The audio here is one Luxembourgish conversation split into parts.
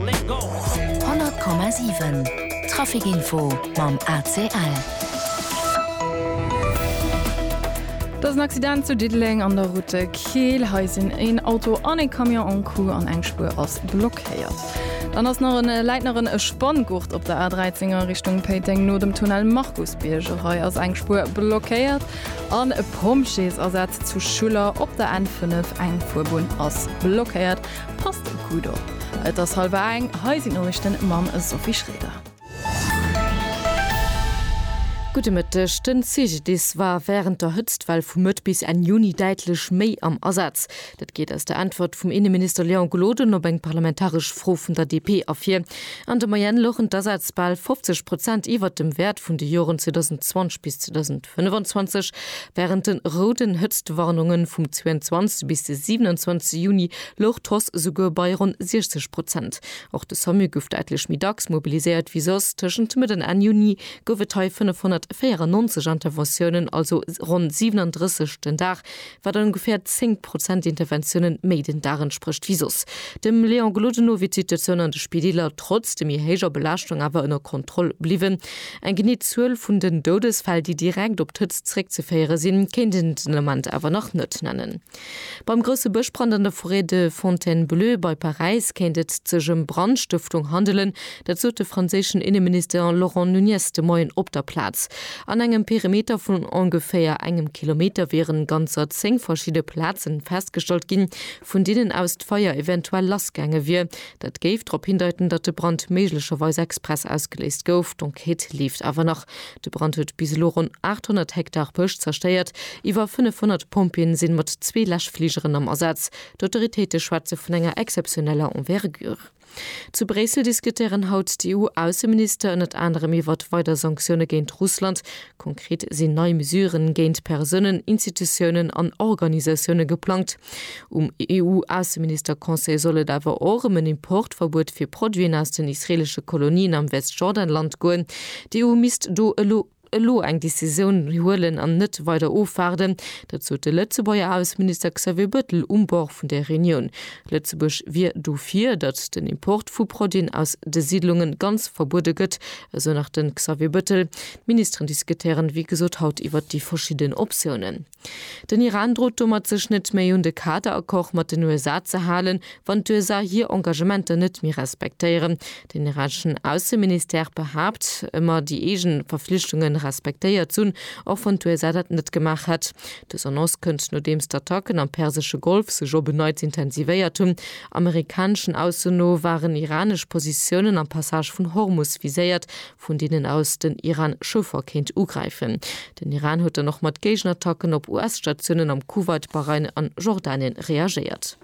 100,7 Traficinfo mam ACL. Et ass en Accident zu Diddeleng an der Route de Keel. Hei sinn een Auto an ee Camion en Coup an eng Spuer ass blockéiert. Dann ass nach en läit nach en Spanngurt op der A13 a Richtung Péiteng no dem Tunnel Markusbierg. Och hei ass eng Spuer blockéiert an e Pompjeesasaz zu Schuller op der N5. Eng Fuerbunn ass blockéiert. Passt och gudd op. Et ass halwer eng, hei sinn d'Noriichten mam Sophie Schreder. Gudde Mëtteg, Den CGDIS war wärend der Hëtztwell vu Mëtt bis Enn Juni däitlech méi am Asaz. Dat geet aus der Äntwert vum Inneminister Léon Gloden op eng parlamentaresch Fro vun der DP ervir. An der Moyenne louchen d'Asätz bal 50 Prozent iwwert dem Wäert vun de Joren 2020 bis 2025. Wärend de rouden Hëtztwarnunge vum 22 bis de 27 Juni louch d'Hoss esouguer bei ronn 60 Prozent. Och de Samu gouf däitlech méi dacks mobiliséiert wéi soss. Tëschent Mëtt an Enn Juni gouf et hei 594 Interventiounen, also ronn 37 den Dag, wat an ongeféier 10 Prozent Interventioune méi den Dag entsprécht wéi soss. Dem Léon Gloden no wier d'Situatioun an de Spideeler trotz de méi héijer Belaaschtung awer ënner Kontroll bliwwen. Eng genee Zuel vun den Doudesfäll, déi direkt op d'Hëtzt zréckzeféiere sinn, kéint een den Ament awer nach net nennen. Beim grousse Bëschbrand an der Forêt de Fontainebleau bei Paräis kéint et sech ëm Brandstëftung handelen. Dat sot de franséischen Inneminister Laurent Nunez de Moien op der Plaz. An engem Perimeter vun ongeféier engem Kilometer wiere ganzer zéng verschidde Plaze festgestallt ginn, vun deenen aus d'Feier eventuell lassgaange wier. Dat géif drop hindeiten, datt de Brand méiglecherweis express ausgeléist gouf. D'Enquête leeft awer nach. De Brand huet bis elo ronn 800 Hektar Bësch zerstéiert. Iwwer 500 Pompjeeën sinn mat zwee Läschfligeren am Asaz. D'Autoritéite schwätze vun enger exzeptioneller Envergure. Zu Bréissel diskutéieren haut d'EU-Ausseminister ënnert anerem iwwert weider Sanktioune géint Russland. Konkret sinn nei Mesuren géint Persounen, Institutiounen an Organisatioune geplangt. Um EU-Ausseminister-Conseil soll et awer och ëm en Importverbuet fir Produiten aus den israeelesche Kolonien am Westjordanland goen. D'EU misst do elo elo eng Decisioun huelen an net weider ofwaarden. Dat sot de Lëtzebuerger Ausseminister Xavier Bettel um Bord vun där Reunioun. Lëtzebuerg wier dofir, datt den Import vu Produiten aus de Siidlunge ganz verbuede gëtt, esou nach de Xavier Bettel. D'Ministeren diskutéieren, wéi gesot, haut iwwert déi verschidden Optiounen. Den Iran drot domat sech net méi un de Kaderaccord mat den USA ze halen, wann d'USA hir Engagementer net méi respektéieren. Den iraneschen Ausseministère behaapt ëmmer déi eegen Verflichtunge respektéiert ze hunn, och wann d'USA dat net gemaach hätt. Dës Annonce kënnt nodeems d'Attacken am persesche Golf sech op en Neits intensivéiert hunn. Amerikaneschen Aussen no waren iranesch Positiounen am Passage vun Hormus viséiert, vun deenen aus den Iran Schëffer kéint ugräifen. Den Iran huet dann och mat Géigenattacken op US-Statiounen am Kuwait, Bahrain an Jordanien reagéiert.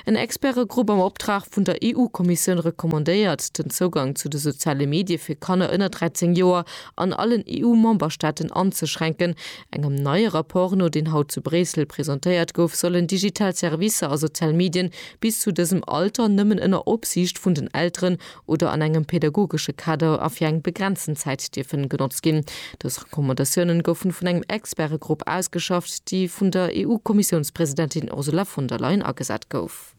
En Expertegrupp am Optrag vun der EU-Kommissioun recommandéiert, den Zougang zu de soziale Medie fir Kanner ënner 13 Joer an allen EU-Memberstaaten anzeschränken. Engem neie Rapport no, deen haut zu Bréissel presentéiert gouf, sollen digital Servicer a sozial Medien bis zu dësem Alter nëmmen ënner Opsiicht vun den Elteren oder an engem pädagogesche Kader a fir eng begrenzten Zäit dierfen genotzt ginn. Dës Recommandatiounen goufen vun engem Expertegrupp ausgeschafft, déi vun der EU-Kommissiounspresidentin Ursula von der Leyen agesat gouf.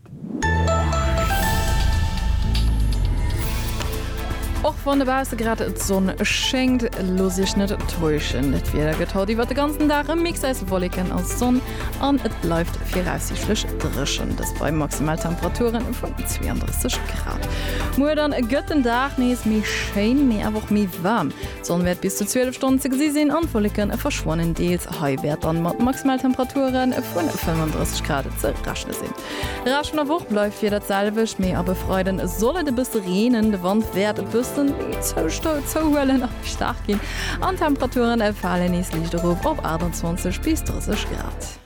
Och wann dobausse grad d'Sonn schéngt, looss Iech net täuschen, dat Wieder gëtt haut iwwert de ganzen Dag e Mix aus Wolleken a Sonn. an et bleift viraussiichtlech dréchen, dëst bei Maximaltemperature vun 32 Grad. Muer dann gëtt den Dag nees méi schéin, mee awer och méi waarm. D'Sonn wäert bis zu 12 Stonnen ze gesi sinn an d'Wolleke verschwannen deels. Hei wäert dann mat Maximaltemperature vun 35 Grad ze rechne sinn. Rescht vun der Woch bleift d'Wieder d'selwecht, mee ab e Freiden soll et e bësse reenen. De Wand wäert e bëssen zouhuelen a méi staark ginn an d'Temperature fale nees liicht erop op 28 bis 30 Grad.